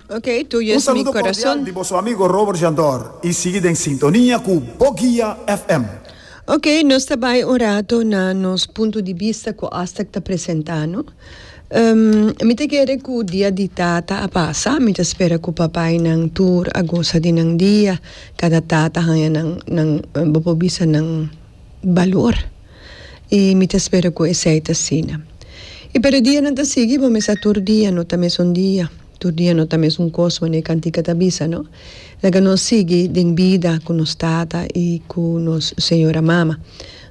Ok, Tuyo Un es mi saludo cordial corazón. di boso amigo Robert Jandor y sigui den sintonia cu Bo Guia FM. Ok, nos ta bay un rato na nos punto di bista cu Astag ta presenta no. Ehm, mi ta kere cu Dia di Tata a pasa, mi ta spera cu papaynan tur a gosa di nan dia, cada tata haya nan, nan, bo por bisa nan balor. i mi ta spera ku esei ta asina. I pa e dianan ta sigui bo mester tur dia no ta mesun dia, tur dia no ta mesun kos manera e kantika ta bisa, no? Laga nos sigui den bida ku nos tata i ku nos señora mama.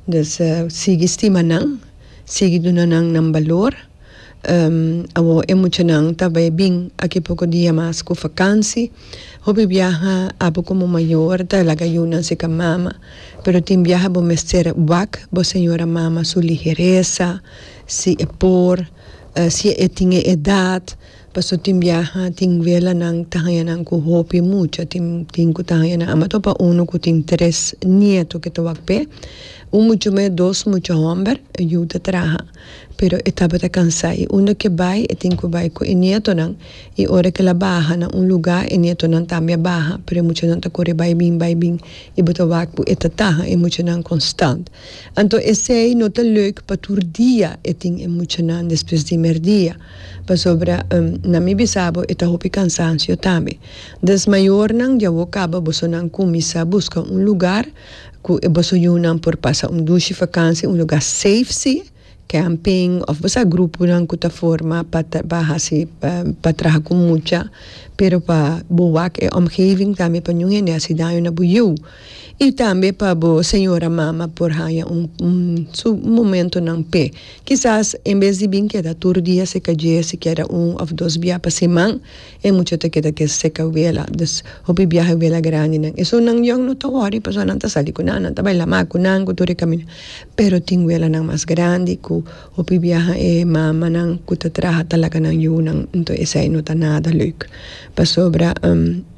Dus sigui stima nan, sigui duna nan nan balor. Awor e muchanan ta bai bin aki poko dia mas ku vakansi. Hopi biaha abo komo mayor ta laga yu nan seka mama. Pero tin biaha bo mester wak bo señora mama su ligeresa, si e por, si e tin e edat. Pasobra tin biaha tin welanan ku ta haña nan ku hopi mucha. Tin tin ku ta haña nan. Amo a topa unu ku tin tres nieto ku ta wak p'e. Un mucha muhé dos mucha hòmber. Yu ta traha. Pero e tabata cansá i unda ke bai e tin ku bai ku e nietonan, i ora ke el a baha na un lugá e nietonan tambe a baha, pero e muchanan ta kore bai bin bai bin i bo ta wak ku e ta taha e muchanan konstant. Anto esei no ta leuk pa tur dia e tin e muchanan despues di merdia, pasobra na mi bisa bo e ta hopi kansansio tambe. Dus mayornan di awo kaba bosonan kuminsá buska un lugá. Cu e boso yunan por pasa un dushi vakantie un lugar safe si, camping of bo sa gruponan cu ta forma pa trabaha si pa traha cu mucha pero pa bo wak e omgeving tambe pa ningún hende haci daño na bo yiu y tambe pa bo señora mama por haya su momentonan p'e kisas en bes di bin keda tur dia si keda un of dos bia pa siman. E mucha ta keda ke seka wela, dus hopi biaha wela grandinan. Esun nan young no ta wori pasobra nan ta sali ku nan, nan ta bai la mak ku nan ku tur e kaminda. Pero tin welanan mas grandi ku hopi biaha e mamanan ku ta traha ta laga nan yunan. Nto esei no ta nada leuk pasobra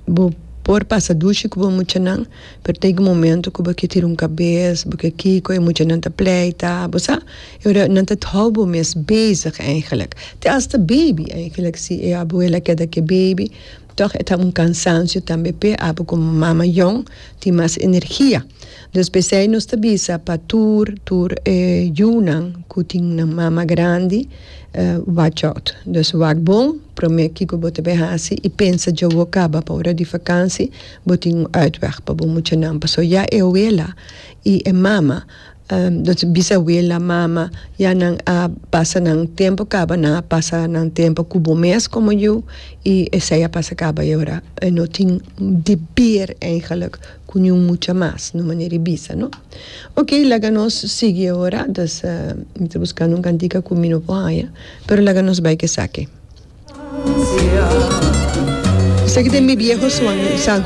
bo por pasa dushi ku bo muchanan. Pero ta yega momento cu bo ke tira un cabes, bo ke kico e muchanan ta pleita, bo sa. E ora nan ta hou bo mes bezig eigenlijk. Te hasta baby eigenlijk si e abuela keda ke baby tog e ta un cansancio tambe p'e abu como mama mayon tin mas energia. Dus pesey nos ta bisa pa tur tur e yunan cu tin nan mama grandi watch out. Dus wak bon prome kico bo ta bay haci y pensa djawo caba pa ora di vakansi Bo tin un uitweg pa bo muchanan, paso ya e awela i e mama, nos bisawela, mama, ya nan a pasa nan tempo kaba, nan a pasa nan tempo ku bo mes komo yu i esei a pasa kaba i ora e no tin deber eigenlik ku niun mucha mas, na un manera di bisa, no? Ok, laga nos sigui e ora, dus mi ta buskando un kantika ku mi no por haña, pero laga nos bai ku esaki. Esaki ta e mi bieho San Juan.